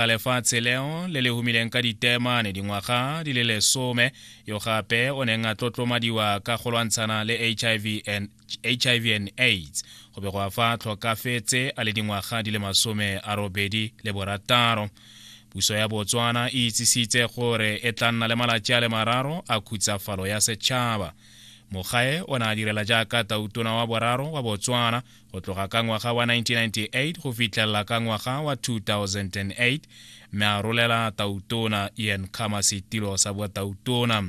ga lefatshe leo le le humileng ka ditemane dingwaga di le lesome yo gape o neng a tlotlomadiwa ka go lwantshana le hiv and, HIV and aids go be go a fa tlhokafetse a le dingwaga di le masome a robedi le borataro puso ya botswana e itsisitse gore e tla nna le malatsi a le mararo a khutsafalo ya setšhaba mogae o ne a direla jaaka tautona wa boraro wa botswana go tloga ka ngwaga wa 1998 go fitlhelela ka ngwaga wa 2008 mme a rolela tautona ian khama setilo sa botautona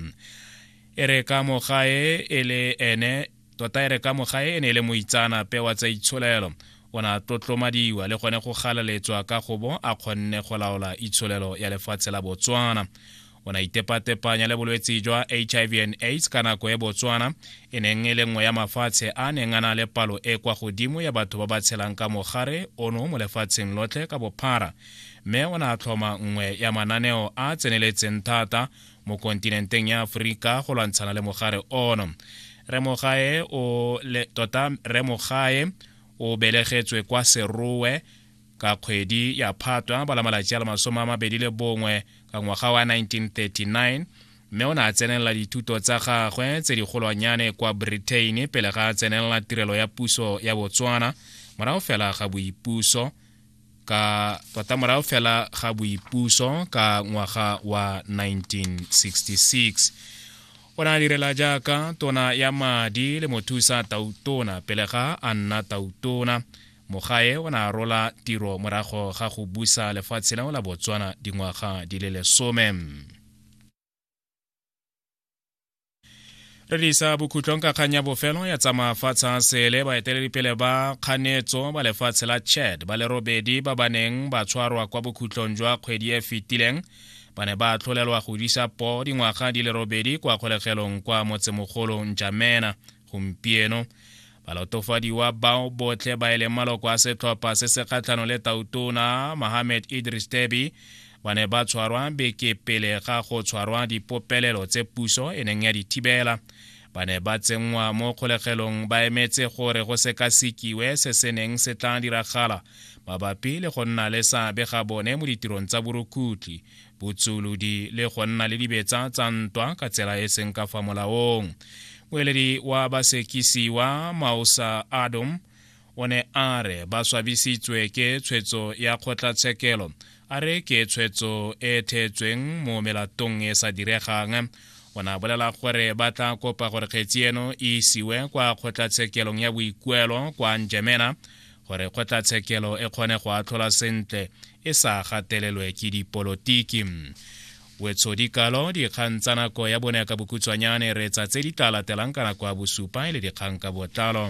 e re ka mogae e le ene tota e re ka mogae e ne e le moitsaanape wa tsa itsholelo o ne a tlotlomadiwa le gone go galaletswa ka gobo a kgonne go laola itsholelo ya lefatshe la botswana o ne a itepatepanya le bolwetse jwa hiv and aids ka nako e botswana e neng e le nngwe ya mafatshe a neng a na le palo e kwa godimo ya batho ba ba tshelang ka mogare ono mo lefatsheng lotlhe ka bophara mme o ne a tlhoma nngwe ya mananeo a tseneletseng thata mo kontinenteng ya aforika go lwantshana le mogare ono remogae o le tota remogae o belegetswe kwa serowe Ka kgwedi ya Phatwa ba la malatsi a le masome a mabedi le bongwe ka ngwaga wa 1939, mme o ne a tsenelela dithuto tsa gagwe tse digolwanyane kwa Britain pele ga a tsenelela tirelo ya puso ya Botswana morago fela ga boipuso ka tota morago fela ga boipuso ka ngwaga wa 1966. O ne a direla jaaka tona ya madi le mothusa tautona pele ga a nna tautona. Mogae o ne a rola tiro morago ga go busa lefatshe leo la Botswana dingwaga di le lesome. re disa bokhutlong ka kgang ya bofelo ya tsa mafatshe a sele baeteledipele ba kganetso ba lefatshe la chad ba le robedi ba ba neng ba tshwarwa kwa bokhutlong jwa kgwedi e fetileng ba ne ba tlholelwa go disa po dingwaga di le robedi kwa kgolegelong kwa motsemogolo njamena Gompieno, balatofadiwa bao botlhe ba e leng maloko a setlhopha se se kgatlhano le tautona Mohamed Idris Deby ba ne ba tshwarwa beke pele ga go tshwarwa dipopelelo tse puso e neng ya di thibela ba ne ba tsenngwa mo kgolegelong ba emetse gore go sekasekiwe se se neng se tla diragala mabapi le go nna le seabe ga bone mo ditirong tsa borukutlhi botsulodi le go nna le dibetsa tsa ntwa ka tsela e seng ka fa molaong moeledi wa basekisiwa maosa adom o ne a re ba swabisitswe ke tshwetso ya kgotlatshekelo a re ke tshwetso e theetsweng mo melatong e sa diregang o ne a bolela gore ba tla kopa gore kgetsi eno e isiwe kwa kgotlatshekelong ya boikuelo kwa njemena gore kgotlatshekelo e kgone go atlhola sentle e sa gatelelwe ke dipolotiki wetsho dikalo dikgang tsa nako ya bone ka bokhutswanyane retsa tse di tla latelang ka nako ya bosupa e le dikgang ka botlalo